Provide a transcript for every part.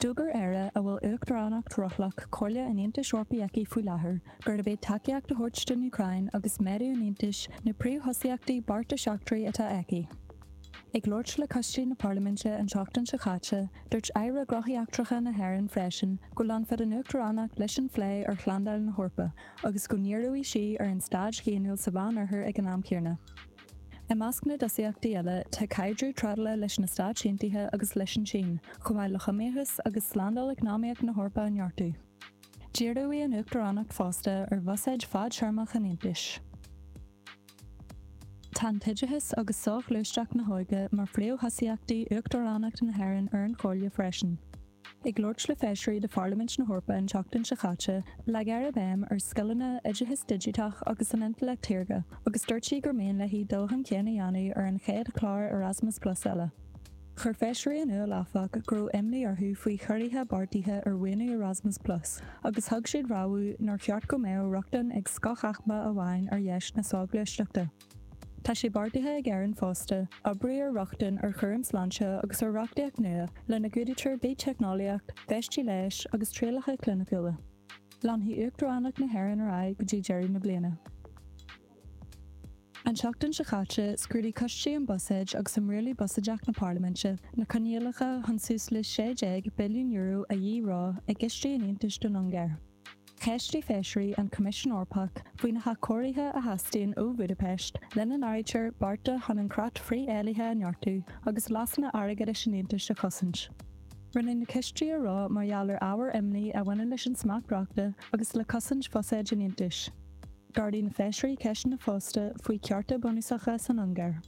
D'fhógair Éire, a bhfuil Uachtaránacht rothlach Chomhairle an Aontais Eorpaigh aici faoi láthair, gurb iad tacaíocht a thabhairt don Úcráin agus méadú an Aontais na príomhthosaíochtaí beartais eachtraigh atá aici. Ag labhairt le coistí na Parlaiminte an tseachtain seo caite, dúirt aire Gnóthaí Eachtracha na hÉireann freisin go leanfadh an Uachtaránacht leis an phlé ar shlándáil na hEorpa agus go ndíreodh sí ar an staid dhaonnúil sa Mheánoirthear ag an am céanna. I measc na dtosaíochtaí eile tá caidreamh trádála leis na Stáit Aontaithe agus leis an tSín, chomh maith le hiomaíochas agus slándáil eacnamaíoch na hEorpa a neartú. Díreoidh an Uachtaránacht fosta ar bhusáid fadtéarmach an Aontais. Tá an t-oideachas agus soghluaisteacht na hóige mar phríomhthosaíochtaí Uachtaránacht na hÉireann ar an Chomhairle freisin. Ag labhairt le feisirí de Pharlaimint na hEorpa an tseachtain seo caite, leag an tAire béim ar scileanna, oideachas digiteach agus an intleacht shaorga, agus dúirt sí gur mian léi dul chun cinn a dhéanamh ar an chéad chlár Erasmus Plus eile. Chuir feisirí in iúl, áfach, go raibh imní orthu faoi chiorruithe beartaithe ar mhaoiniú Erasmus Plus agus thug siad rabhadh nár cheart go mbeadh rochtain ag scothaicme amháin ar dheis na soghluaisteachta. Tá sé beartaithe ag Éirinn fosta oibriú ar rochtain ar chúram sláinte agus ar reachtaíocht nua lena gcumhdaítear biteicneolaíocht, feistí leighis agus trialacha cliniciúla. Leanfaidh Uachtaránacht na hÉireann ar aghaidh go dtí deireadh na bliana. An tseachtain seo caite, scrúdaigh Coistí um Buiséid agus um Rialú Buiséadach na Parlaiminte na coinníollacha chun suas le €16 billiún a dhíreo i gcistí an Aontais don Ungáir. Cheistigh feisirí an Coimisiún Eorpach faoi na hathchóirithe a theastaíonn ó Bhúdaipeist, lena n-áirítear bearta chun an creat frith-éillithe a neartú agus leasanna airgeadais an Aontais a chosaint. Rinneadh na cistí a reo mar gheall ar ábhair imní a bhaineann leis an smacht reachta agus le cosaint bhuiséid an Aontais. D'ardaigh na feisirí ceisteanna fosta faoi chearta bunúsacha san Ungáir.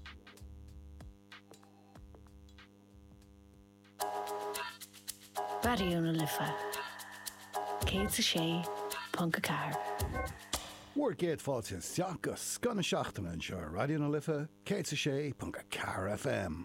Raidió na Life 106.4. Bhur gcéad fáilte isteach go scoth na seachtaine anseo ar Raidió na Life 106.4 FM.